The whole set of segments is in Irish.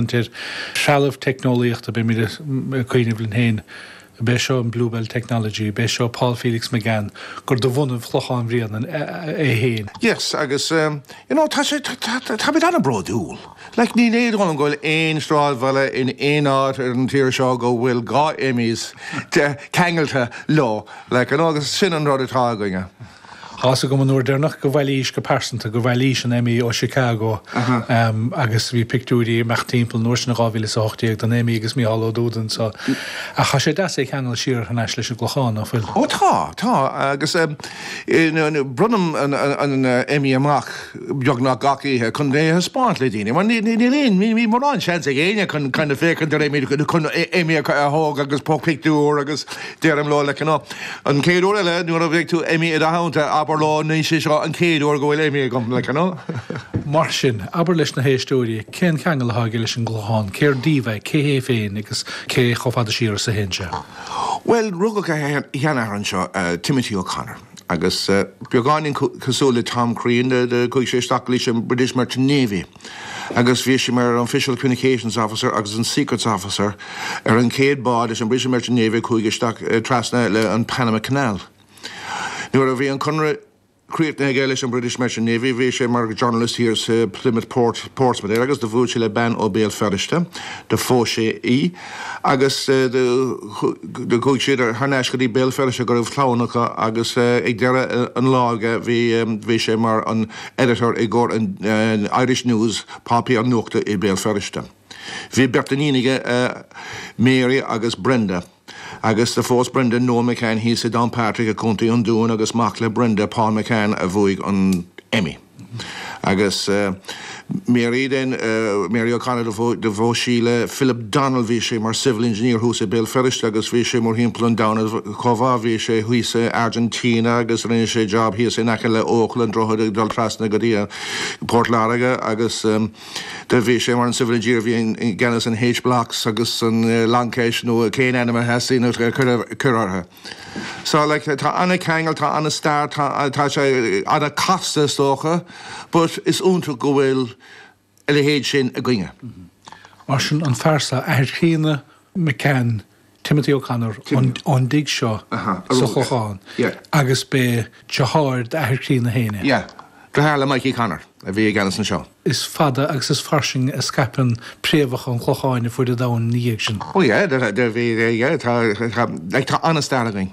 Ar threalamh teicneolaíochta, beimid ag caint ina leith féin, b'é seo an Bluebell Technology, b'é seo Paul Felix McCann, gur de bhunadh Chlochán Bhréanainn é féin. Yes agus you know tá sé, táimid an-bhródúil. Like ní fheadar liom go bhfuil aon sráidbhaile in aon áit ar an tír seo go bhfuil dhá Emmys ceangailte leo like you know agus sin an rud atá againne. Tá's agam an uair deireanach go bhfuairis, go pearsanta, go bhfuairis an Emmy ó Chicago agus bhí pictiúirí ag imeacht timpeall an uair sin in dhá mhíle is a hocht déag den Emmy agus Micheál Ó Dubhda so ach tá sé deas é a cheangal siar thar n-ais leis an gClochán, nach bhfuil? Ó tá, tá agus eh braonaim an Emmy amach beagnach gach oíche chun é a thaispeáint le daoine mar níl aon, níl morán seans ag éinne chun kind of féachaint ar Emmy, chun Emmy a thógáil agus pictiúr agus, Deirim leo like you know an chéad uair eile nuair a gheobhaidh tú Emmy i do theannta abair leo ní hé seo an chéad uair go bhfuil Emmy agam like you know. Mar sin, abair leis na héisteoirí cén ceangal atá aige leis an gClochán, cér díobh é, cé hé féin agus cé chomh fada siar is a théann sé? Bhuel, rugadh a sheanathair anseo, Timothy O'Connor, agus beagáinín cosúil le Tom Crean, chuaigh sé isteach leis an British Merchant Navy. agus bhí sé mar an Official Communications Officer agus an Secrets Officer ar an chéad bád leis an British Merchant Navy a chuaigh isteach trasna le an Panama Canal. Nuair a bhí an conradh críochnaithe aige leis an British Merchant Navy bhí sé mar Journalist thiar sa Plymouth Port, Portsmouth there agus do bhuail sé le bean ó Béal Feirste, do phós sé í agus do chuaigh siad thar n-ais go dtí Béal Feirste go raibh clann acu agus ag deireadh an lá do bhí sé mar an Editor i gcomhair an Irish News, páipéar nuachta i Béal Feirste. Bhí beirt iníon aige, Mary agus Brenda, agus do phós Brenda Noel McCann thíos i nDownpatrick i Co. an Dúin agus mac le Brenda, Paul McCann, a bhuaigh an Emmy. Agus Mary then, Mary O'Connor, do phós sí le Philip Donnell, bhí sé mar Civil Engineer thuas i Béal Feirste agus bhí sé mórthimpeall an domhain, Cúba, Bhí sé thíos i Argentina agus rinne sé job thíos in aice le Eochaill an droichead ag dul trasna go dtí Port Láirge agus do bhí sé mar an Civil Engineer a bhí i gceannas an H-Blocks agus an Long Kesh nó pé ainm a theastaíonn a chur orthu. So like tá ana ceangal tá ana stair tá sé ana casta is dócha but is iontach go bhfuil a leithéid sin againne. Mar sin, an fear san, athair chríonna McCann, Timothy O'Connor, ón dtigh seo sa Chlochán agus b'é driotháir d'athair chríonna féin é. Yeah. Driotháir le Mikey Connor a bhí i gceannas anseo. Is fada agus is fairsing a scaipeann préamhacha an Chlocháin ar fuaid an domhain ina dhiaidh sin. Oh yeah, bhí, yeah, tá, like, tá an-stair againn.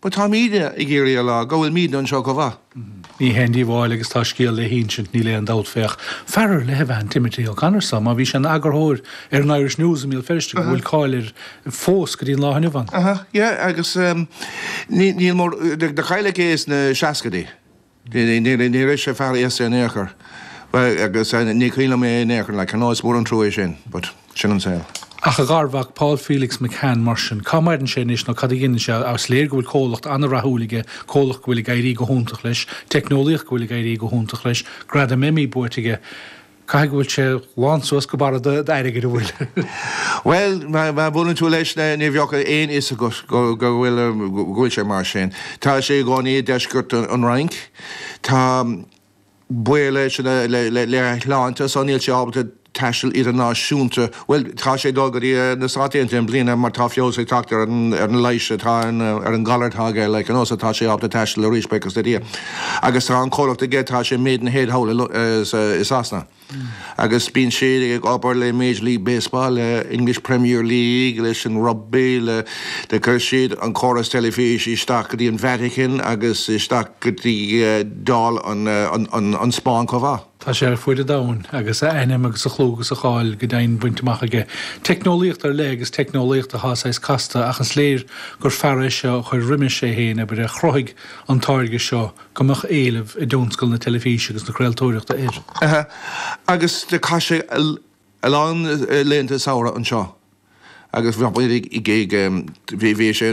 But tá muid ag iarraidh a rá go bhfuil muid anseo chomh maith. Ní haon díobháil agus tá scéal le hinsint níl aon dabht féach fear ar leith ab ea Timothy O'Connor só má bhí sé ina eagarthóir ar an Irish News i mBéal Feirste go bhfuil cáil air fós go dtí an lá inniu ann. Aha yeah agus ní mór de cháil aige sna seascaidí. Ní raibh sé fiafraíos-sa in aon chor. Bhuel, agus ní cuimhin liom é in aon chor, like, you know, is mór an trua é sin, but sin an saol. Ach a gharmhac, Paul Felix McCann, mar sin, cá maireann sé anois nó cad a dhéanann sé? Is léir go bhfuil comhlacht an-rathúil aige, comhlacht go bhfuil ag éirí go hiontach leis, teicneolaíocht go bhfuil ag éirí go hiontach leis, Gradam Emmy buaite aige. Caithfidh go bhfuil sé lán suas go barra d'airgead, an bhfuil? Bhuel, má bhuaileann tú leis na, ní bheadh aon fhios agat go bhfuil sé mar sin. Tá sé ina chónaí i deisceart an Fhrainc. Tá fadhbanna aige lena shláinte, so níl sé ábalta taisteal idirnáisiúnta. Bhuel, tá sé ag dul go dtí na Stáit Aontaithe i mbliana mar tá feabhas ag teacht ar an leigheas atá, ar an ghalar atá aige, like, you know, so tá sé ábalta taisteal arís, buíochas le Dia. Agus tá an comhlacht aige, tá sé i Maidenhead thall i Sasana. Agus bíonn siad ag obair le Major League Baseball, le English Premier League, leis an rugbaí, le, le, chuir siad an córas teilifíse isteach go dtí an Vatican agus isteach go dtí Dáil an, an, an, an Spáinn chomh maith. Tá sé ar fuaid an domhain agus a ainm agus a chlú agus a cháil go deimhin bainte amach aige. Teicneolaíocht ar leith agus teicneolaíocht atá saghas casta ach is léir gur fear é seo a chuir roimis é féin, abair, a chruthaigh an táirge seo go mbeadh éileamh i dtionscal na teilifíse agus na craoltóireachta air. Agus chaith sé a lán laethanta samhraidh anseo agus bhí sé